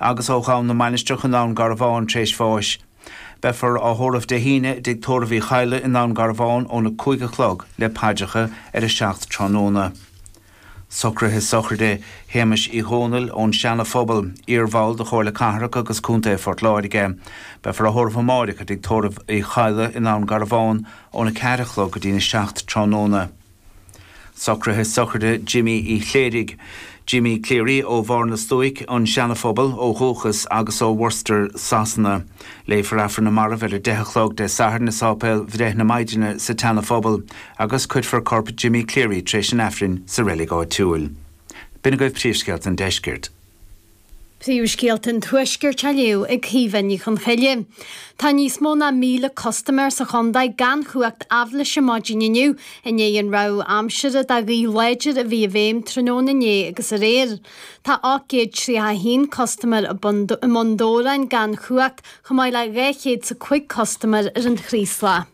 agus ó Dhún na Mainistreach i nDún Garbhán tar éis bháis. Beifear á thórramh Dé hAoine i dTigh Tórraimh Uí Chadhla i nDún Garbhán óna cúig a chlog le paidreacha ar a seacht tráthnóna. Socruithe sochraide Shéamais Uí Dhomhnaill ón Seana Phobal, iar-bhall de Chomhairle Cathrach agus Contae Phort Láirge. Beifear á thórramh amáireach i dTigh Tórraimh Uí Chadhla i nDún Garbhán óna ceathair a chlog go dtína seacht tráthnóna. Socruithe sochraide Jimí Uí Chléirigh, Jimmy Cleary, ó Bharr na Stuaic, an Seana-Phobal, ó dhúchas agus ó Worcester, Sasana. Léifear Aifreann na Marbh ar a deich a chlog Dé Sathairn i sáipéal Bhreith na Maighdine sa tSeana-Phobal agus cuirfear corp Jimmy Cleary tar éis an Aifrinn sa reilig áitiúil. B'in agaibh príomhscéalta an deiscirt. Príomhscéalta an Tuaiscirt á léamh ag Caoimhe Ní Chonchoille Tá níos mó ná 1,000 custaiméir sa chontae gan chumhacht aibhléise maidin inniu i ndiaidh an rabhadh aimsire do ghaoth láidir a bhí i bhfeidhm tráthnóna inné agus aréir. Tá 831 custaiméir i mBun Dobhráin gan chumhacht, chomh maith le 200 's 5 custaiméir ar an Chraoslach.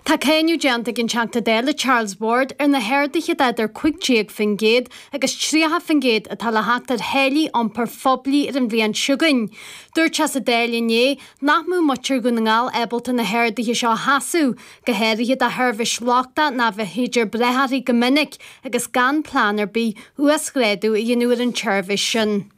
Tá cáineadh déanta ag an Teachta Dála Charles Ward ar na harduithe de idir 15% agus 30% atá le theacht ar tháillí iompair phoiblí ar an bhliain chugainn. Dúirt sé sa Dáil inné nach mbeadh muintir Dhún na nGall ábalta na harduithe seo a sheasamh, go háirithe do sheirbhís lochtach nárbh fhéidir brath uirthi go minic agus gan plean ar bith uasghrádú a dhéanamh ar an tseirbhís sin.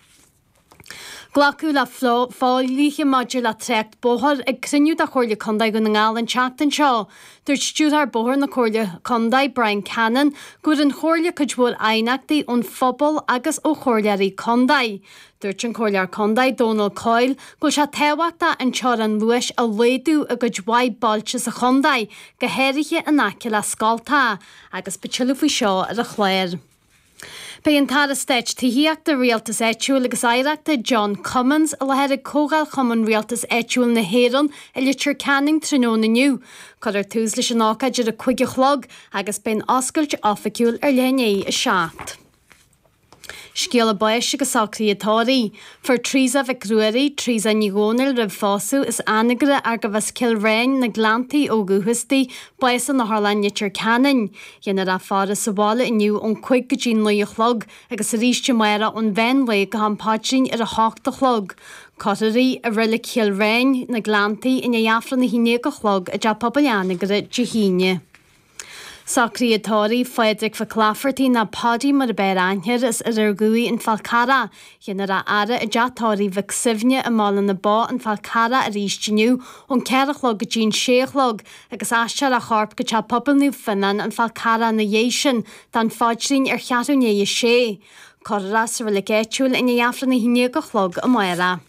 Glacadh le fodhlíthe maidir le trácht bóthair ag cruinniú de Chomhairle Contae Dhún na nGall an tseachtain seo. Dúirt Stiúrthóir Bóthair na Comhairle Contae, Bryan Cannon, go bhfuair an Chomhairle cuid mhór aighneachtaí ón phobal agus ó Chomhairleoirí Contae. Dúirt an Comhairleoir Contae, Dónal Coyle, go bhfuil sé tábhachtach an teorainn luais a laghdú i gcuid mhaith bailte sa chontae, go háirithe in aice le scoltacha, agus beidh tuilleadh faoi seo ar an chlár. Beidh an tAire Stáit Tithíochta, Rialtas Áitiúil agus Oidhreachta, John Cummins, i láthair ag Comhdháil Chumann Rialtais Áitiúil na hÉireann i Leitir Ceanainn tráthnóna inniu. Cuirfear tús leis an ócáid ar a cúig a chlog agus beidh an oscailt oifigiúil ar leath i ndiaidh a seacht. Scéala báis agus socruithe tórraimh. Fuair Teresa Mhic Ruairí, Teresa Ní Dhomhnaill roimh phósadh, as Anagaire ach gurbh as Cill Riáin, na Gleanntaí ó dhúchas di, bás in Otharlann Leitir Ceanainn. Dhéanfar a faire sa bhaile inniu ón cúig go dtí an naoi a chlog agus arís amárach ón mheán lae go ham paidrín ar a hocht a chlog. Cuirfear í i Reilig Chill Riáin, Na Gleanntaí, i ndiaidh Aifreann a haon déag a chlog i dTeach Pobail Anagaire Dé hAoine. Socruithe tórraimh Phádraig Mhic Laifeartaigh nó Paddy mar ab fhearr aithne air as Oirear Dhumhaí, an Fál Carrach. Dhéanfar a fhaire i dTeach Tórraimh Mhic Suibhne i mBaile na Bó, an Fál Carrach arís inniu ón ceathair a chlog go dtí an sé a chlog agus aistreofar a chorp go Teach Pobail Naomh Fionnán, An Fál Carrach ina dhiaidh sin, don Phaidrín ar cheathrú i ndiaidh a 6. Cuirfear sa roilic áitiúil i ndiaidh Aifreann a haon déag a chlog amárach.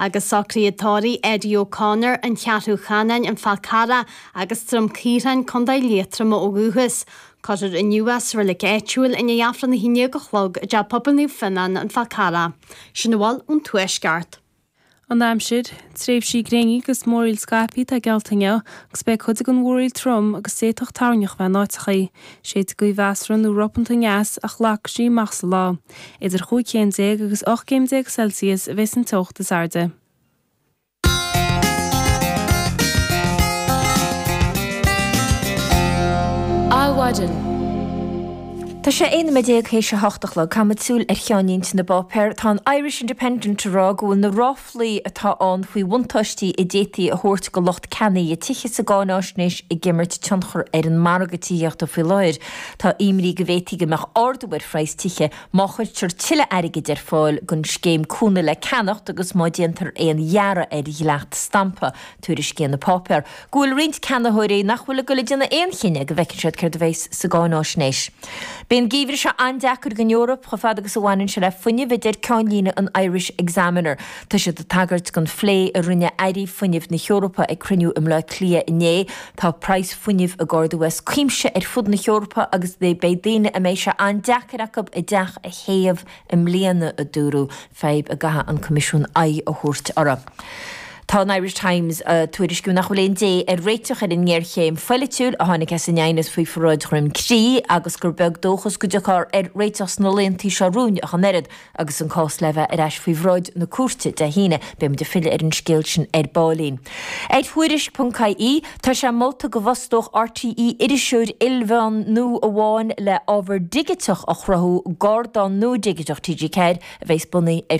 agus socruithe tórraimh, Eddie O'Connor, An Cheathrú Cheanainn, An Fál Carrach agus Droim Caorthainn, Co. Liatroma ó dhúchas. Cuirfear inniu é sa roilic áitiúil i ndiaidh Aifreann a haon déag a chlog i dTeach Pobail Naomh Fionnán, An Fál Carrach. Sin a bhfuil ón Tuaisceart. An aimsir, Tréimhsí gréine agus múraíl scaipthe atá geallta inniu agus beidh cuid den mhúraíl trom agus d'fhéadfadh toirneach bheith in áiteachaí. Séidfidh gaoth mheasartha nó ropanta aneas ach lagfaidh sí amach sa lá. Idir chúig chéim déag agus ocht gcéim déag Celsius a bheas an teocht is airde. Adhmhaidin. Tá sé 11 nóiméad théis a hocht a chlog. caithimis súil ar cheannlínte na bpáipéar. Tá an Irish Independent ag rá go bhfuil na ráflaí atá ann faoi bhuntáistí a d'fhéadfaí a thabhairt do lucht ceannaithe tithe sa gcáinaisnéis ag imirt tionchar ar an margadh tithíochta faoi láthair. Tá imní go bhféadfadh go mbeadh ardú ar phraghas tithe má chuirtear tuilleadh airgid ar fáil don scéim cúnamh le ceannacht agus má déantar aon ghearradh ar dhleacht stampa, tuairiscíonn an páipéar. go bhfuil roinnt ceannaitheoirí nach bhfuil ag dul ag déanamh aon chinneadh go bhfeicfidh siad céard a bheas sa gcáinaisnéis. Beidh an geimhreadh seo an-deacair don Eoraip chomh fada agus a bhaineann sé le fuinneamh, a deir ceannlíne an Irish Examiner. Tá siad ag tagairt don phlé a rinne airí fuinnimh na hEorpa ag cruinniú i mBleá Cliath inné. Tá praghas fuinnimh ag ardú as cuimse ar fud na hEorpa agus beidh daoine a mbeidh sé an-deacair acu a dteach a théamh I mbliana, a dúradh, fadhb a gcaithfidh an Coimisiún aghaidh a thabhairt uirthi. Tá an Irish Times ag tuairisciú nach bhfuil aon dé ar réiteach ar an ngéarchéim phoilitiúil a tháinig as an aighneas faoi pharáid Dhroim Crí agus gur beag dóchas go dtiocfar ar réiteach sna laethanta seo romhainn ach an oiread. Agus an cás le bheith ar ais faoi bhráid na cúirte Dé hAoine, beimid ag filleadh ar an scéal sin ar baillín ar Thuairisc.ie. Tá sé molta go bhfostódh RTÉ iriseoir ilmheán nua amháin le ábhar digiteach a chruthú d'ardán nua digiteach TG4 a bheas bunaithe ar